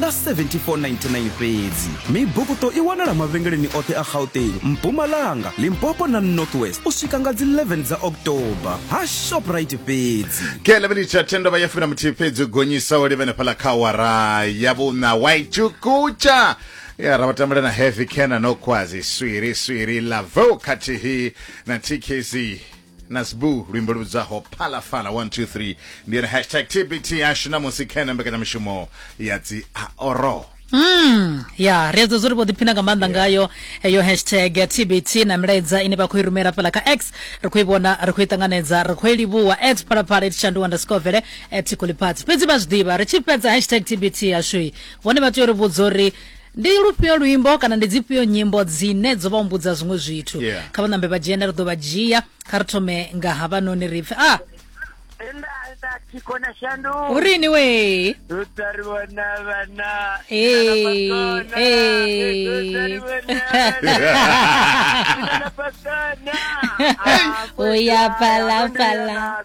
na 7499 fhedzi mibukuto i wanala mavhengeleni oṱhe a gauteng mpumalanga limpopo na northwest u swika nga dzi 11 dza october ha shoprite fhedzi ke 11 tsha thendo vha ya fumi na muthihi fhedzi u gonyisa o livhene fhala kha wara ya vhuna waitshukutsha ya ra vhatambula na heavy cana no kwazi swiri swiri lavo khathihi na tkz nasbu luimbo lu vhidzaho phalafhala 123 ndi yone hashtag tbt yashu namusi khena mbekanyamushumo ya dzi aoro Mm, ya ri edzo zwo ri vho ḓiphina nga maanḓa ngayo heyo hashtag ya tbt na milaedza ine vha khou i rumela fhala kha x ri khou i vhona ri khou i ṱanganedza ri khou i livhuwa at phalaphala it shandu underscore vele at kulipati fhedzi vha zwi ḓivha ri tshi fhedza hashtag tbt yashui vhone vha tea uri vhudza uri Ndi lufhio luimbo kana ndi dzifhio nyimbo dzine dzo vha humbudza zwiṅwe zwithu? Yeah. Kha vha ṋambe vha dzhena ri ḓo vha dzhia. Kha ri thome nga havhanoni ri pfe a Nda nda thiko na shandu. hu ri ini wee. Rotary vhona vhana. Hey, Vhona, hey. Rotary vhona vhana. Vhona vhana. Ah, Uya phala, phala.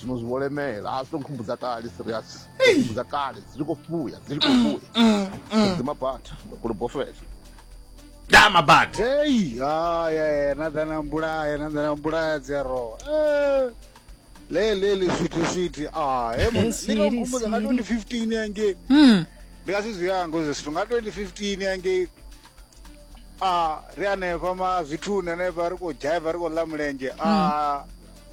zwino zwi vho lemela a zwi to nkhumbudza kale serious nkhumbudza kale dzi tshi khou fuya dzi tshi khou mm, fuya mm, mm. dzima bata ndo kule bofela da mabata hey ah yeah na dana mbulaya na dana mbulaya dzi a rowa eh le le le switi switi ah he mona ndi nga khumbuza nga 2015 yange mm ndi nga sizwi yango zwithu nga 2015 yange ah ri anefha ma zwithuni anefha ri khou dzhaiva ri khou ḽa mulenzhe ah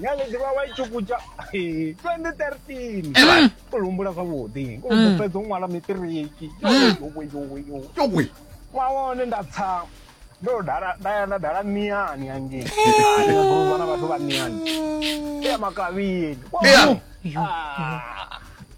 nyaledi vha wa itshukutsha 2013 u humbula zwavhuḓi u mm. fhedza u ṅwala mitiriki mm. yowe wa wone nda tsa ndo dala nda ya nda dala miyani hangei aaa na vhathu vha miyani ya makavhini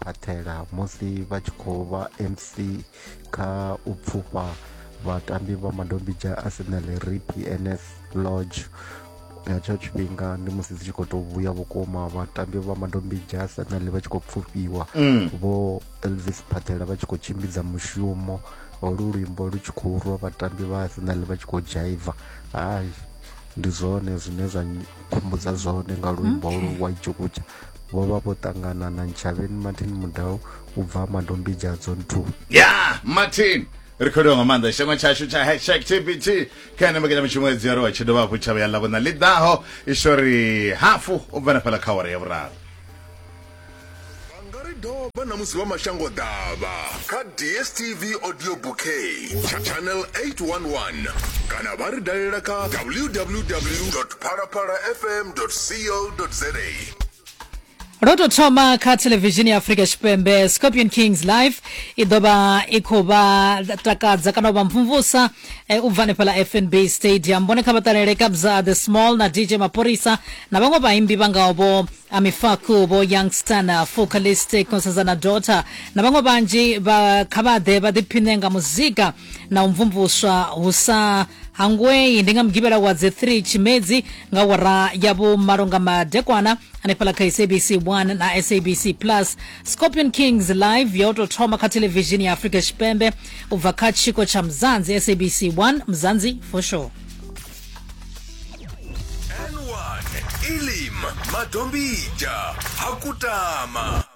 phaṱhela musi vha tshi khou vha mc kha u pfufha vhatambi vha madombidzha arsenal rip ns lodge nga tsho tshifhinga ndi musi dzi tshi khou tou vhuya vhukuma vhatambi vha madombidzha arsenal vha tshi khou pfufhiwa mm. vho elvis phaṱhela vha tshi khou tshimbidza mushumo holu luimbo lu tshi khou rwa vhatambi vha arsenal vha tshi khou dzhaiva hayi ndi zwone zwine zwa khumbudza zwone nga luimbo hmm. lwa ijokutsha vho vha vho ṱangana na ntshavheni martin mudau u bva madombidzha zone 2 ya martin ri khou livha nga maanḓa tshitangwa tshashu tsha hashtag tbt kha ene mbekanyamushumo ya dziaro tshi dovha hafhu tshavha ya ḽavhona ḽi ḓaho ishori hafu u bva na fhala kha wara ya vhuraru doba na musi vha mashango ḓavha kha dstv audio bouquet channel 811 kana vha ri dalela kha www phalaphalafm.co.za ro tou thoma kha thelevishini ya afrika tshipembe scorpion kings live i ḓo vha i khou vha takadza kana u vha mvumvusa eh, u bva hanefhala fnb stadium vhone kha vha ṱalele kabza the small na dj mapholisa na vhaṅwe vhaimbi vha ngaho vho amifaku vho youngster na focalistic constanza na dota na vhaṅwe vhanzhi vha kha vha ḓe vha ḓiphine nga muzika na u mvumvuswa hu sa hangwei ndi nga mugivhela wa dzi 3 tshimedzi nga wara ya vhumalo nga madekwana hanefhaḽa kha sabc 1 na sabc plus scorpion kings live yo tou thoma kha thelevishini ya afrika tshipembe u bva kha tshiko tsha mzanzi sabc 1 mzanzi for sure N1 Ilim Madombija Hakutama